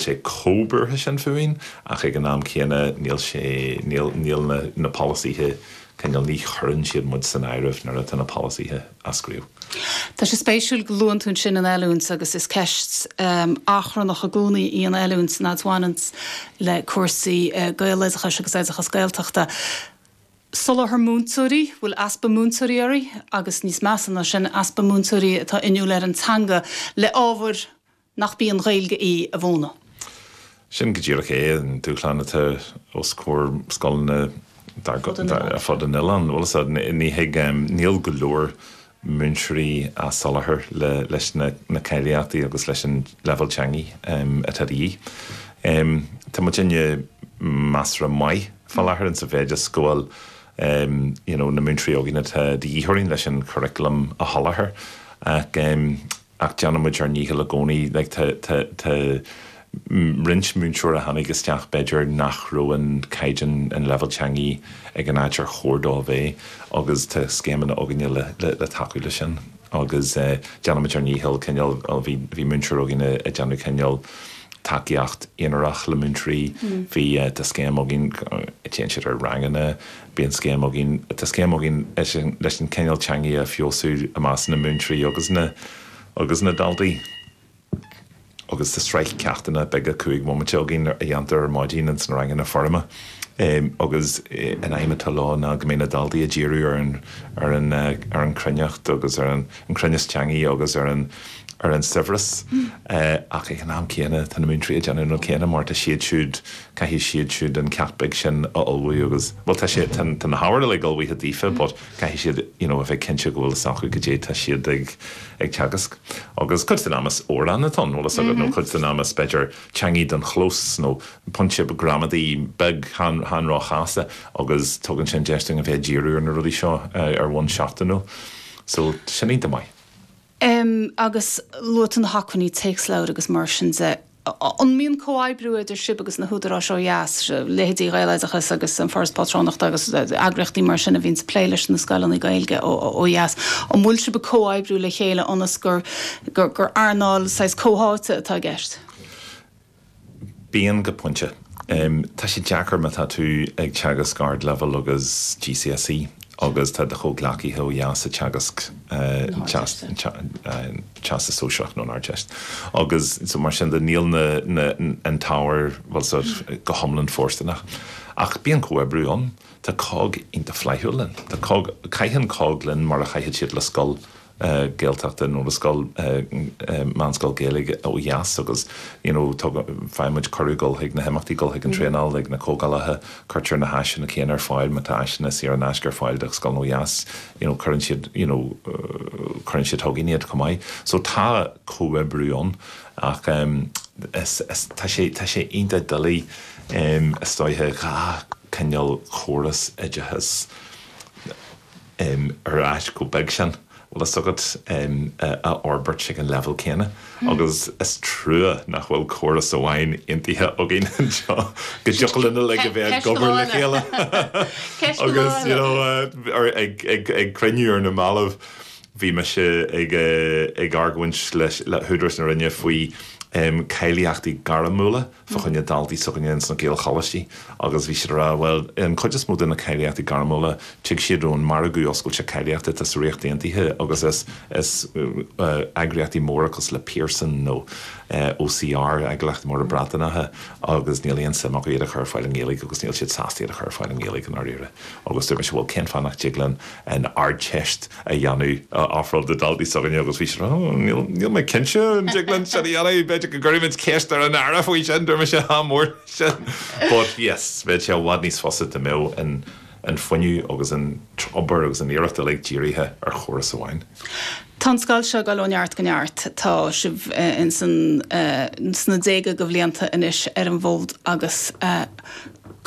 sé comhbhuartha sin fúinn ach ag an am céanna níl sé, níl, níl na, na polasaithe, cineál, ní chuireann siad muid san áireamh nuair atá na polasaithe á scríobh. Tá sé spéisiúil go luann tú ansin an oiliúint agus is ceist achrannach i gcónaí í an oiliúint, admhaím, le cúrsaí Gaeloideachais agus Oideachas Gaeltachta. Soláthar múinteoirí, bhfuil easpa múinteoirí orainn agus níos measa ná sin, easpa múinteoirí atá inniúil ar an teanga le ábhair nach bí an Ghaeilge í a mhúineadh. Sin go díreach é an dúshlán atá os comhair scoileanna ar fud an oileáin. Níl go leor múinteoirí á soláthar leis na cáilíochtaí agus leis an leibhéal teangaí atá de dhíth. Tá muid ag déanamh measartha maith fá láthair sa mhéid is go bhfuil na múinteoirí againn atá de dhíth orainn leis an churaclam a sholáthar. ach déanann muid ár ndícheall i gcónaí. Like tá tá tá roinnt múinteoir a tháinig isteach b'fhéidir nach raibh an caighdeán, an leibhéal teangaí ag an áit ar chóir dó a bheith agus tá scéimeanna againne le le tacú le sin agus déanann muid ár ndícheall cineál bhí bhí múinteoir againne ag déanamh cineál tacaíocht aonarach le múinteoirí bhí tá scéim againn a dtéann siad ar ranganna Bíonn scéim againn, tá scéim againn leis an cineál teangaidh a fheabhsú i measc na múinteoirí agus na agus na daltaí agus tá sraith ceachtanna beaga cúig mbomaite againn a dhéantar ar maidin ins na ranganna foirme agus an aidhm atá leo ná go mbeidh na daltaí ag díriú ar an ar an ar an cruinneacht agus ar an chruinneas teangaidh agus ar an ar an saibhreas. é ach ag an am céanna tá na múinteoirí ag déanamh an rud céanna mar tá siad siúd, caithfidh siad siúd an ceacht beag sin a ullmhú agus, bhuel tá sé, tá na hábhair uilig ullmhaithe daofa but caithfidh siad you know a bheith cinnte go bhfuil fhios acu cad é tá siad ag, ag teagasc. Agus cuid den am is amhráin atá ann, uaireanta nó cuid den am is b'fhéidir teangaidh don chlós nó pointe gramadaí beag chan róchasta agus tugann sin deis dúinn a bheith ag díriú ar na rudaí seo ar bhonn seachtainiúil so sin an dea-mhaith. Em agus luaigh tú na hacmhainní téacsleabhair agus mar sin de. An mbíonn comhoibriú idir sibh agus na húdaráis ó dheas, leithéidí Ghaeloideachas agus An Foras Pátrúnachta agus eagraíochtaí mar sin a bhíonns ag plé leis na scoileanna Gaeilge ó dheas, an bhfuil sibh ag comhoibriú le chéile ionas gur earnáil saghas comhtháite atá i gceist? Bíonn, go pointe. Tá sé deacair mar tá tú ag teagasc ardleibhéil agus GCSE agus tá do chomhghleacaithe ó dheas ag teagasc Teastas Sóisearach nó an Ardteist agus mar sin de níl an t-ábhar go hiomlán fóirsteanach. Ach bíonn comhoibriú ann. Tá COGG iontach flaithiúil linn. Tá COGG, caitheann COGG linn mar a chaithfeadh siad le scoil. Gaeltachta nó le scoil, meánscoil Gaeilge ó dheas agus you know tugann, faigheann muid cuireadh dul chuig na himeachtaí, dul chuig an traenáil, ag na comhdhálacha, cuirtear na háiseanna céanna ar fáil, má tá áiseanna saor in aisce ar fáil do scoileanna ó dheas you know cuireann siad you know cuireann siad chugainn iad chomh maith. So tá comhoibriú ann ach is, tá sé, tá sé iontach doiligh is dóiche dhá chineál córas oideachais, em, ar áit chomh beag sin, bhfuil fhios agat, em, a fhorbairt ag an leibhéal céanna agus is trua nach bhfuil córas amháin aontaithe againn anseo go dtiocfadh linn uilig a bheith ag obair le chéile agus, you know, ar, ag, ag, ag cruinniú ar na mallaibh bhí mise ag eh, ag argóint leis, le húdaráis na Roinne faoi, em, cáilíochtaí gairmiúla. fá choinne daltaí s'againne ins na Gaelcholáistí agus bhí siad a rá, bhuel, an chuid is mó de na cáilíochtaí gairmiúla, tig siad ón margadh oscailte cáilíochtaí atá sa Ríocht Aontaithe agus is eagraíochtaí móra cosúil le Pearson nó OCR, eagraíochtaí móra Breataineacha, agus níl aon suim acu iad a chur ar fáil i nGaeilge agus níl siad sásta iad a chur ar fáil i nGaeilge i ndáiríre. Agus dúirt mise, bhuel, cén fáth nach dtig linn an Ardteist a dhéanamh, a ofráil do daltaí s'againne agus bhí siad á rá, níl, níl mé cinnte an dtig linn sin a dhéanamh, b'fhéidir go gcuirfimid ceist ar an Aire faoi sin, deir mise, ádh mór leis sin. But, yes, bheadh sé i bhfad níos fusa dá mbeadh an, an fuinneamh agus an t-obair agus an iarracht uilig dírithe ar chóras amháin. Tá an scoil seo ag dul ó neart go neart. Tá sibh in san, sna déaga de bhlianta anois ar an bhfód agus,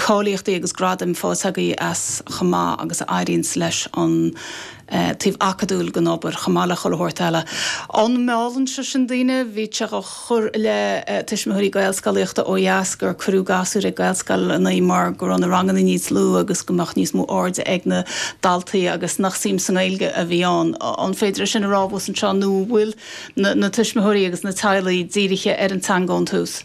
cáilíochtaí agus gradaim faighte agaibh as chomh maith agus a éiríonns leis an taobh acadúil den obair, chomh maith le chuile shórt eile. An meallann sé sin daoine? Bhítí ag cur i leith tuismitheoirí Gaelscolaíochta ó dheas gur cuireadh gasúir ag Gaelscoileanna mar go raibh na ranganna níos lú agus go mbeadh níos mó airde ag na daltaí agus nach suim sa nGaeilge a bhí ann. An féidir é sin a rá abhus anseo nó an bhfuil na tuismitheoirí agus na teaghlaigh dírithe ar an teanga ón tús?